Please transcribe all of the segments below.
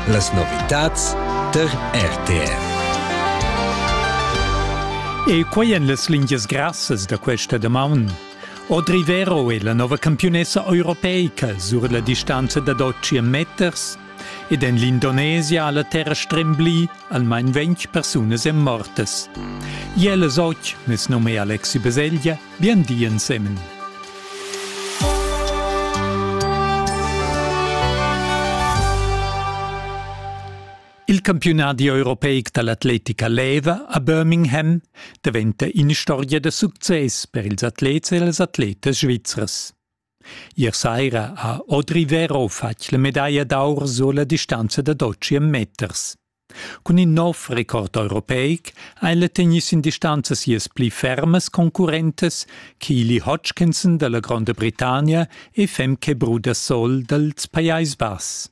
Las novitads tar RTR. E quai en las lingias grassas da questa damaun. Audrey Vero è la nova campiunessa europeica sur la distanza da 12 meters ed en l'Indonesia ha la terra strembli almain 20 persunas en mortas. Iela Soc, nes nome Alexi Beseglia, Bien di ensemen. Il campiunadi europeic dall'atletica leva a Birmingham daventa ina storia da success per ils atlets e las atletas svizzras. Ier saira ha Audri Vero fatg la medaglia d'aur sulla distanza da Dociem meters. Cun in nov record europeic ha el tegnì sin distanza sias pli fermas concurrentas Keely Hodgkinson dalla Gronda Britannia e Femke Brudersol dals Pajais Bass.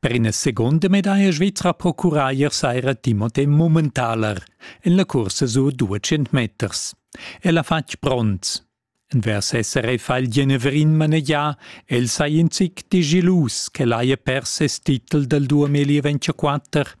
Per ina secunda medaglia svizra procura ier saira Timothé Mummentaler en la cursa sur 200 meters. El ha fatg bronz. Envers SRF ha il Genevrin manegià, el sai in zic di gelus ch'el haja pers ses titel dal 2024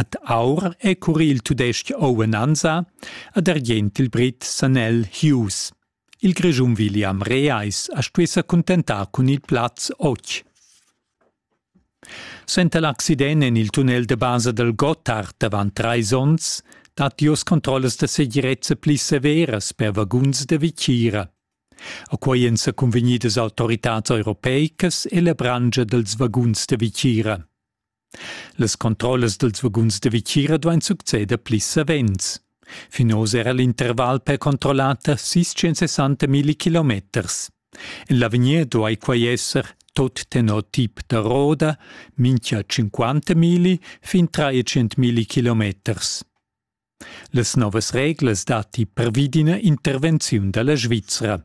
Ad aur è curri il tudestg Owen Anza, ad argient il brit Sanel Hughes. Il Grischun William Reais ha stuì sa cuntentar cun il plaz otg. Senta l'accident en il tunnel de basa del Gotthard avant trais onns dat jos controllas da segirezza pli severas per vaguns de Vicira. A quei en sa convegnidas autoritads europeicas e la brangia dels vaguns de Vicira. Las controllas dals vaguns da vitgira duain succeder pli savens. Fin oz era l'interval per controllar da 660.000 kilometers. En l'avegnir duai quai esser tot tenor tip da roda mincha 50.000 fin 300.000 kilometers. Las novas reglas datti pervi d'ina intervenziun da la Svizra.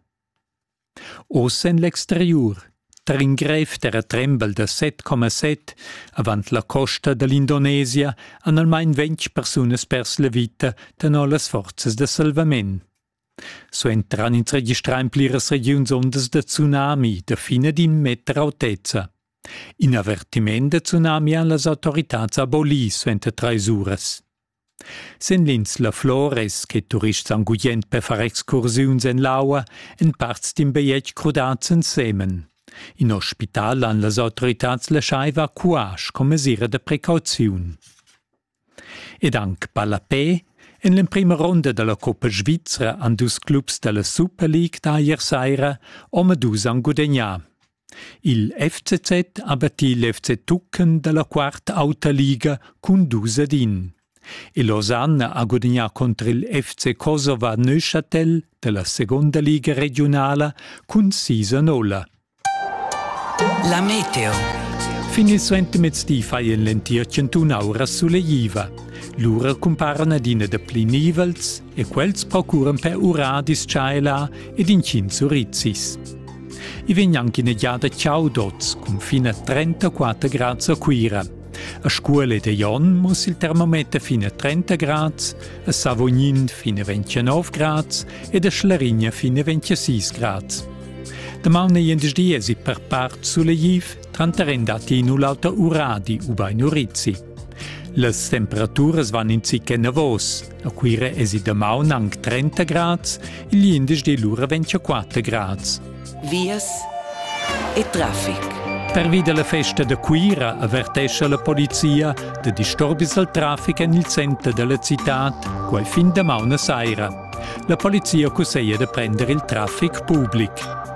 Oz en l'exteriur tar in grev terratrembel da 7,7 avant la costa da l'Indonesia han almain ventg persunas pers la vita tenor las forzas da salvament. Suentran ins registrà en pliras regiuns ondas da tsunami da fin ad in meter autezza. In avertiment da tsunami han las autoritads abolì suenter trais uras. Sin l'insla Flor es che turists han gugent per far excursiuns en l'aua en parts d'in bajetg crudads ensemen. In ospital han las autoritads laschaiva cuasch come mesira da precauziun. Ed anc ballapè En l'emprima ronda da la Coppa svizra han dus clubs da la Super League da ier saira omadus han gudegnà. Il FCZ ha battì l'FC Tuchen da la quart auta liga cun dus ad in. E Lausanne ha gudagnà contr il FC Kosova Neuchâtel da la seconda liga regiunala cun sis a nolla. La meteo. Fin il suentermezdi fai en l'entir chantun aura suleiva. Lura cumparan adina da pli nivels e quels procuran per urar dis-chaila ed inchins urizis. I vegn anche in egliada Ciaudots cun fine 34 grad a Cuira. A Scuole de Jon muss il termometer fine 30 grad, a Savognin fine 29 grad ed a Schlarigna fine 26 grad. Damaun e jendies per part sulegliv, tranter en dati in l'alta Uradi u bei Nurizzi. Las temperaturas van in zic enavos. A Cuira esi damaun anc 30 grads, il l'indesch lura 24 grads. Vias e traffic. Pervi dalla festa da Cuira avertescha la polizia da disturbis al traffic en il center dalla citad quel fin damaun a saira. La polizia cusseglia da prendere il traffic public.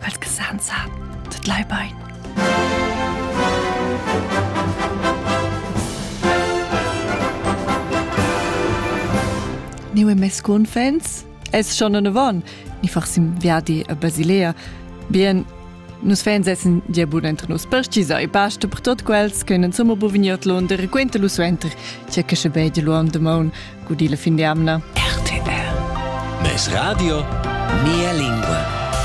Quels che san san, tut lai bain. Ni mes cunfens? Es schon eine Won. Ni farsim viadi a Basilea. Bien, Nus fans essen gia bun entr nus perstisa e basta per tot quels che non sommo buvigniot lunder e quenta lu suenter, c'è che se vede lu on the moon, gudi la fin di amna. RTR. Mes radio, mia lingua.